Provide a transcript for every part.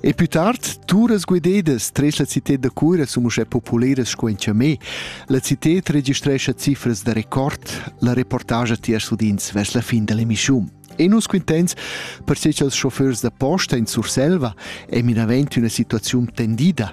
E più tard, turas guidedas tres la cited da cura sun uschè populeras sco in Chamé. La cited registrescha cifras da record, la reportagia ti as udins vers la fin dell'emissiun. E nus quintens perché cha'ls chauffeurs da posta in Surselva è minavent üna situaziun tendida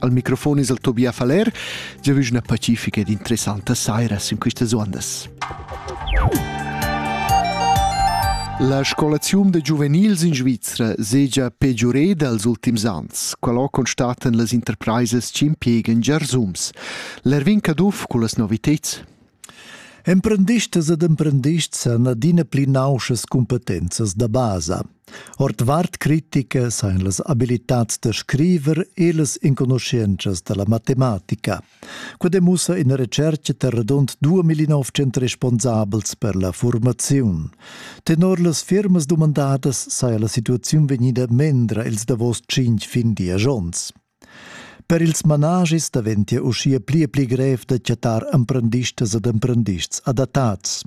Al microfon es el Tobias Faller, giavüsch üna pacifica ed interessanta saira sün quistas ondas. La scolaziun da giuvenils in Svizra segia peggiureda als ultims ans. Qualo constatan las interpraisas ch'impiegan giarsums. L'Erwin Caduff cu las noviteds. Emprendistas ed emprendists han adina pli nauschas cumpetenzas da basa. Ordvart critica sain las abilitats da scriver e las enconuschientschas da la matematica. Quai demussa ina retschertga da radund 2.900 responsabels per la formaziun. Tenor las firmas dumandadas saja la situaziun vegnida mendra ils davos tschinch fin dies onns. Per ils managis daventia uschia pli e pli grev da chattar emprendistas ed emprendists adattads.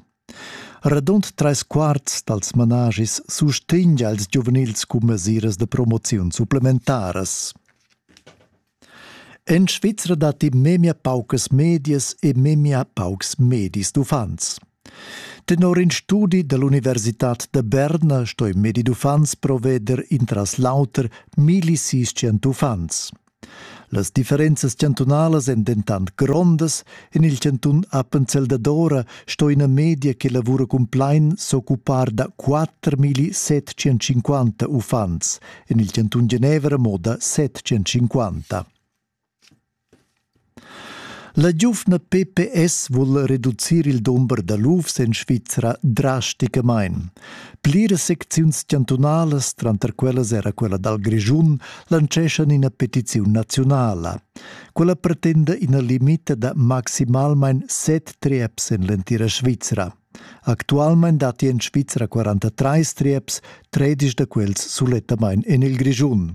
Radund trais quarts dals managis sustegna els giuvenils cun mesiras da promoziun supplementaras. En Svizra datti memia paucas medias e memia paucs medis d'uffants. Tenor in studi dall'universitad da Berna stoi medi d'uffants proveder intras l'auter milli sis cent uffants. Las differenzas chantunalas èn dentant grondas. En il chantun Appenzell Dadora sto ina media che lavura cumplain s'occupar da 4.750 uffants, en il chantun Genevra mo da 750. La giuvna pps vul reducir il dumber da lufs en Svizra drasticamain. Pliras secziuns chantunalas, tranter quellas era quella dal Grischun, lanceschan ina petiziun naziunala. Quella pretenda ina limita da maximalmain set trieps en l'entira Svizra. Actualmain datti en Svizra 43 trieps, tredisch da quels sulettamain en il Grischun.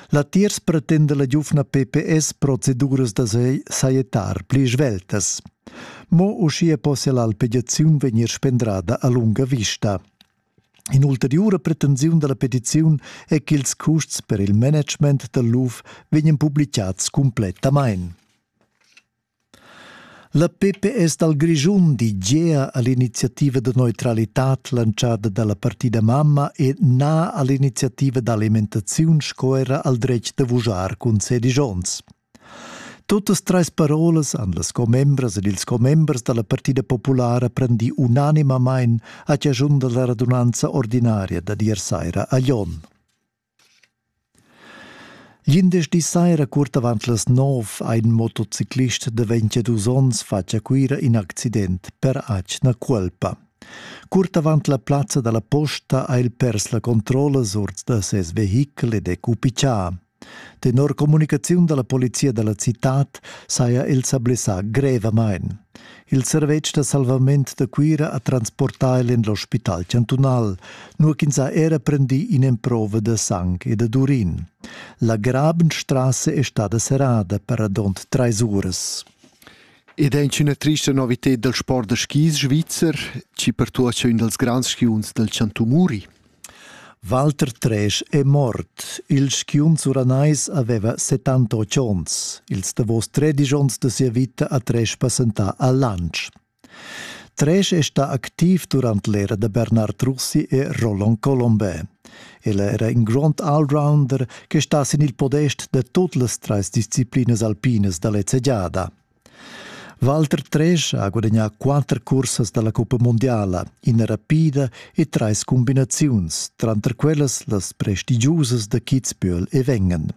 Latiers pretenda la giuvna PPS proceduras da sajettar pli sveltas. Mo uschia possia l'alpegiaziun vegnir spendrada a lunga vista. In'ulteriura pretensiun da la petiziun è ch'ils custs per il management dal luf vegnan publicads cumplettamain. La PPS dal Grischun di gea a l'iniziativa da neutralitad lantschada da la partida mamma e na a l'iniziativa d'alimentaziun sco era al dretg da vujar cun sedisch onns. Tutas trais parolas han las commembras ed ils commembers da la Partida Populara prendì unanimamain a chaschun da la radunanza ordinaria da dir saira a Jon. Glindesdi saira curt avant las nov ha in motociclist da 22 onns fatg a Cuira in accident per atgna cuolpa. Curt avant la plazza dalla posta ha el pers la controlla ord da ses vehichel ed è cupichà. Tenor communicaziun dalla polizia dalla citad saja el sa blessà grevamain. Il servetsch da salvament da Cuira ha transportà el en l'ospital chantunal, nua ch'ins ha era prendì in'emprova da sang e dad urin. La Grabenstrasse è stada serrada per radund trais uras. Ed è una trista novità del sport da skis svizzer, ci per tuocha ün dels grands skiunzs del Chantu Muri. Walter Tresch è mort. Il skiunz uranais aveva settantotg onns. Ils davos tredisch onns da sia vita ha Tresch passentà a Lantsch. Tresch è stà activ durant l'era da Bernard Russi e Roland Colombin. El era in grond allrounder che sta sin il podest da tut las trais disciplinas alpinas da lezza giada. Walter Tresch ha gudagnà quatter cursas da la cuppa mundiala, ina rapida e trais cumbinaziuns, tranter quellas las prestigiusas da Kitzbühel e Wengen.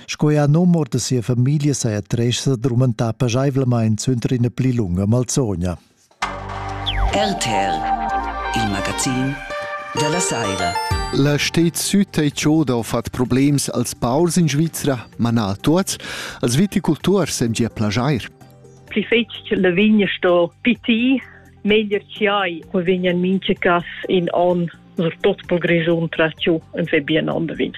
Sco er num or da sia famiglia saja Tresch sa drumentà paschaivlamain suenter ina pli lunga malsogna. RTL, il magazin dalla saira. La stet süd ei choda ho fat problems als paurs in Svizra, ma na a tuots, als viticulturs em gia plajair. Pli fetg che la vigna sto piti, meglier che hai, ko vigna minche cas in on sur tot pol Grischun tra chu en ve bien ander vin.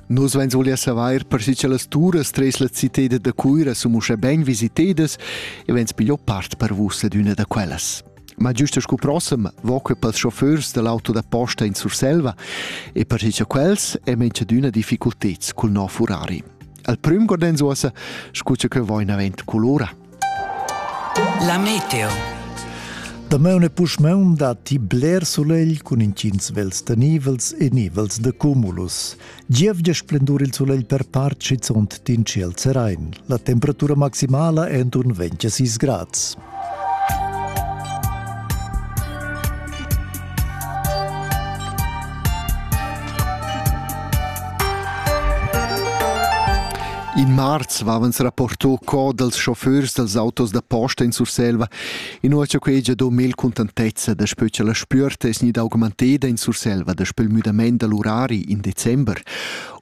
Nus veins voglia saver per si che las turas tres la citeda da Cuira sun uschè ben visitedas e veins piglio part per vus ad üna da quellas. Ma giusto scu prossem voque pels chauffeurs dell'auto da posta in Surselva e per si che quels è mensch d'una difficulteds cul no Ferrari. Al prüm gordenzosa scuce che voin avent colora. La meteo. Damaun e puschmaun datti bler sulegl cun intgins vels tenivels e nivels de cumulus. Gievgia splendur il sulegl per part schizunt d'in ciel serain. La temperatura maximala è enturn 26 grads. In marz vavans rapporto co dals chauffeurs dals autos da posta in Surselva, inua cha quei già do mel contentezza da spö cha la spüerta es gnida augmenteda in Surselva daspö il müdamaint da l'urari in december.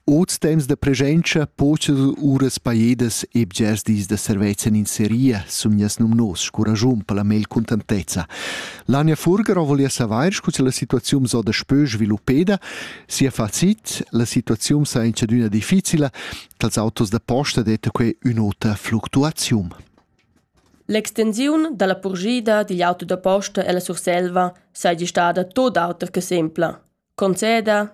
Oz temps da presenza pochas uras pajedas e bgers dis da servezza in seria sun gnas nomnos scuragiun per la mel contentezza. Lania Furger volia savair scu cha la situaziun so da spö sviluppeda, Sia facit, la situaziun sa in chadüna difficila, dals autos da posta detta quei ün'ota fluctuaziun. L'extensiun dalla purgida digl auto da posta ella Surselva saja stada tot auter che sempla, conceda